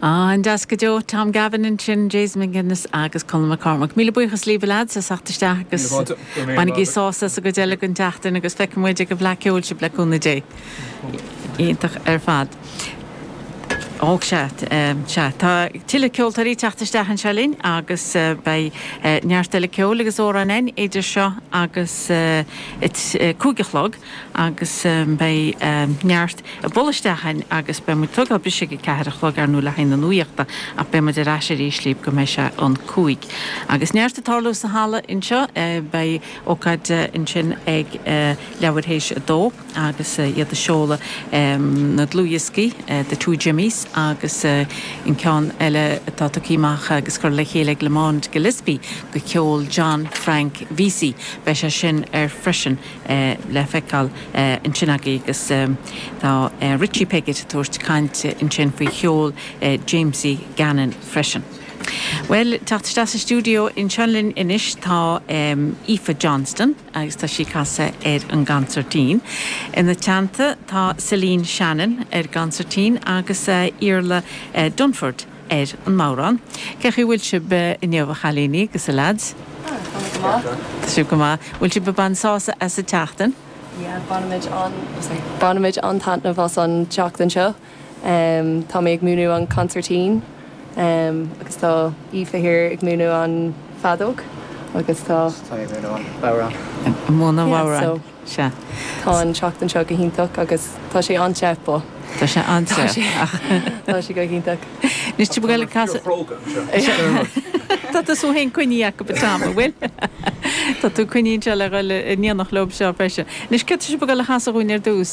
An-deas go deo. Tom Gavin ansin, Jason McGuinness agus Colm McCormack. Míle buíochas, libh lads, as theacht isteach agus bainigí sásamh as an gcuid eile den tseachtain agus feicfidh muid ag an bhFleadh Ceoil sibh, le cúnamh Dé. Iontach ar fad. Ó, sea, sea. Tá tuilleadh ceoltóirí ag teacht isteach anseo linn agus beidh neart eile ceoil agus amhráin again idir seo agus a cúig a chlog. agus beidh neart ag bualadh isteach chugainn agus beidh muid ag tógáil briseadh ag a ceathair a chlog ar ndóigh le haghaidh na nuachta ach beidh muid ar ais arís libh go mbeidh sé an cúig agus neart ag tarlú sa halla anseo beidh ócáid ansin ag leathuair théis a dó agus iad ag seoladh na dlúthdhioscaí the two jimmys agus an ceann eile atá tugtha amach agus curtha le chéile ag lamond gillespie de cheol john frank vesey beidh sé sin ar freisin le feiceáil ansin agaibh agus tá Richie Piggott ag tabhairt caint ansin faoi cheol Jamesy Gannon freisin. Bhuel, teacht isteach sa stiúideo anseo linn anois tá Aoife Johnston agus tá sí ag casadh ar an gconsairtín. Ina teannta tá Celine Shannon ar an gconsairtín agus Iarla Dunford. ar an mbodhrán. Cé chaoi bhfuil sibh inniu a chailíní agus a leaids? Ah, tá muid go maith. Tá sibh go maith. Bhfuil sibh ag baint sásamh as an tseachtain? Yeah, bainimid an, sorry, bainimid an-taitneamh as an tseachtain seo. Em, tá mé ag múineadh an consairtín, em, agus tá Aoife here ag múineadh an feadóg agus tá. Tá mé ag múineadh an bhodhrán. Ag múineadh an bhodhráin. Yeah, so. Sea. Tá an tseachtain seo go hiontach agus tá sé an-te, but. Tá sé an-te, ach. Tá sé go hiontach. Anois, timpeall eile casadh. Tá cróga anseo, Dermot. Tá tú féin coinnithe acu, but Tom, an bhfuil? Tá tú coinnithe anseo le dhul in éineacht leo seo freisin. Anois, céard tá sibh ag dul a chasadh dhúinn ar dtús?